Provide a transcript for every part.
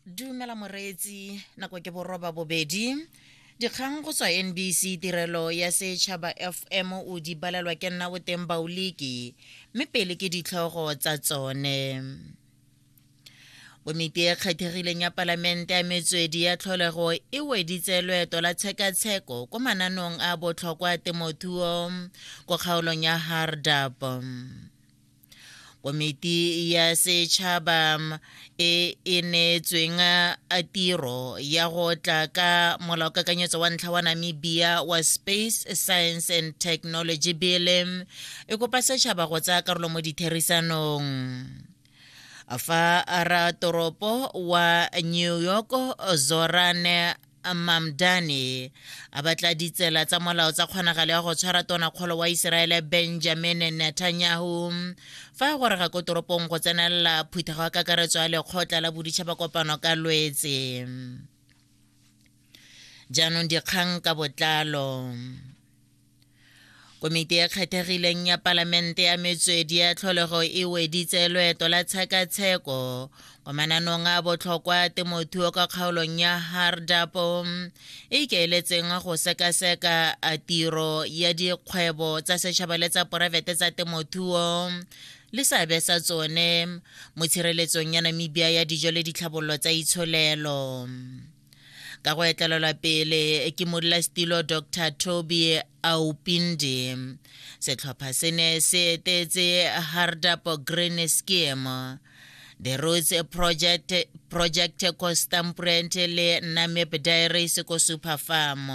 dumela moreetsi nako ke boroba bobedi dikgang go tswa nbc tirelo ya setšhaba fm o di balelwa ke nna boteng baoliki mme pele ke ditlhogo tsa tsone komiti e kgethegileng ya palamente ya metswedi ya tlholego e weditse loeto la tshekatsheko ko mananong a botlhokwa a temothuo ko kgaolong ya hardap komiti ya setšhaba e e neetsweng a tiro ya go tla ka molaokakanyetso wa ntlha wa namibia wa space science and technology bill e kopa setšhaba go tsaya karolo mo ditherisanong fa ra toropo wa new york zorane Mamdani a batla ditsela tsa molao tsa kgonagalo ya go tshwara tonakgolo wa Iseraele Benjamin Netanyahu fa a gorega ko toropong go tsenelela phuthego ya kakaretso ya lekgotla la boditšhaba kopano ka lwetse jaanong dikgang ka botlalo komiti e kgethegileng ya palamente ya metswedi ya tlholego e weditse loeto la tshekatsheko kwa mananong a botlhokwa temothuo ka kgaolong ya hardapo e ikaeletseng go sekaseka a tiro ya dikgwebo tsa setšhaba le tsa poraefete tsa temothuo le seabe sa tsone mo tshireletsong ya namibia ya dijo le ditlhabololo tsa itsholelo ka go etlelelwa pele ke modulasetilo dr toby aupindi setlhopha se ne se etetse hardap green scheme the roots project project ko stamprent le namep diaries ko super farm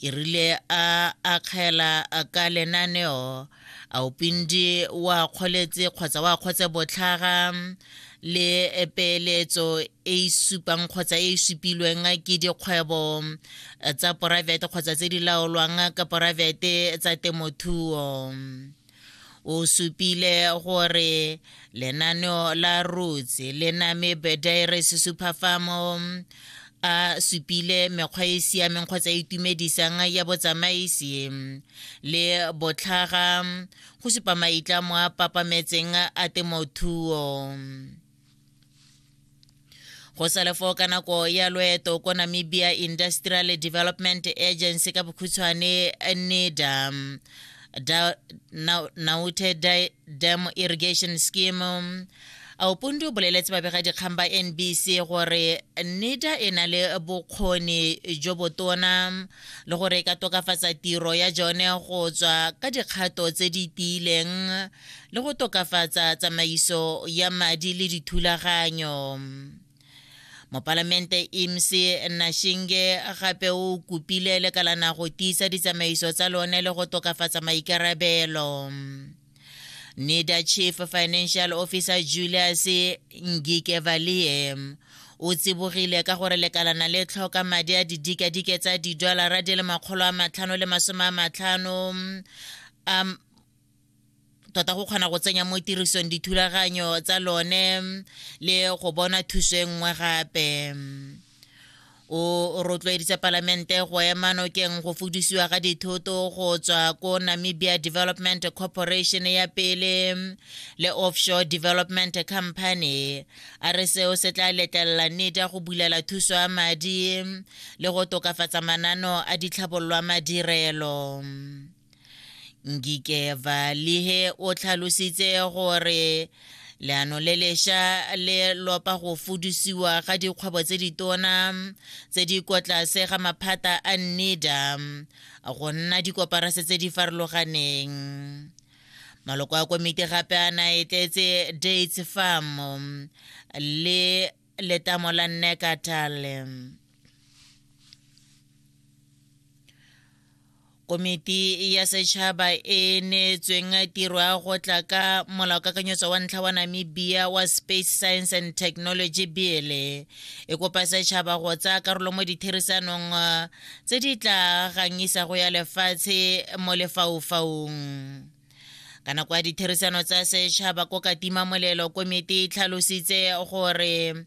e rile a akgela ka lenaneo a o pindi wa kgoletse kgotsa wa kgotse botlhaga le peeletso e e supang kgotsa e e supilweng ke dikgwebo tsa poraefete kgotsa tse di laolwang ka poraefete tsa temothuo o supile gore lenaneo la roots le name bediris superfamo a supile mekgwa e siameng kgotsa e itumedisang ya botsamaisi le botlhaga go supa maitlamo a papametseng a temothuo go salefo ka nako ya loeto ko namibia industrial development agency ka bokhutshwane neda da, na, naute da, dam irrigation scheme aupundu o boleletse babegadikgang ba nbc gore neda e na le bokgoni jo botona le gore e ka tokafatsa tiro ya jone go tswa ka dikgato tse di tiileng le go tokafatsa tsamaiso ya madi le dithulaganyo mopalamente imc nashinge gape o kopile lekalana go tiisa ditsamaiso tsa lone le go tokafatsa maikarabelo nida chief financial officer julius ngikevalie o tsibogile ka gore lekalana le tlhoka madi a didikadike tsa didolara di le makgolo a matlhano le masome a matlhano a tota go kgona go tsenya mo tirisong dithulaganyo tsa lone le go bona thuso e nngwe gape o rotloeditse palamente go ema nokeng go fudisiwa ga dithoto go tswa ko namibia development corporation ya pele le offshore development company a re seo se tla letlelela nida go bulela thuso ya madi le go tokafatsa manano a ditlhabololwa madirelo ngike valihe o tlhalositse gore leano le lesha le lopa go fudisiwa ga dikgwebo tse ditona tse di kwa tlase ga maphata a nida go nna dikoparase tse di farologaneng maloko a komiti gape a na e tletse dates farm le letamo la necatale komiti ya setšhaba e neetsweng tiro ya go tla ka molaokakanyetso wa ntlha wa namibia wa space science and technology bill e kopa setšhaba go tsaya karolo mo ditherisanong tse di tla gangisago ya lefatshe mo lefaufaung ka nako ya ditherisano tsa setšhaba ko katima molelo komiti e tlhalositse gore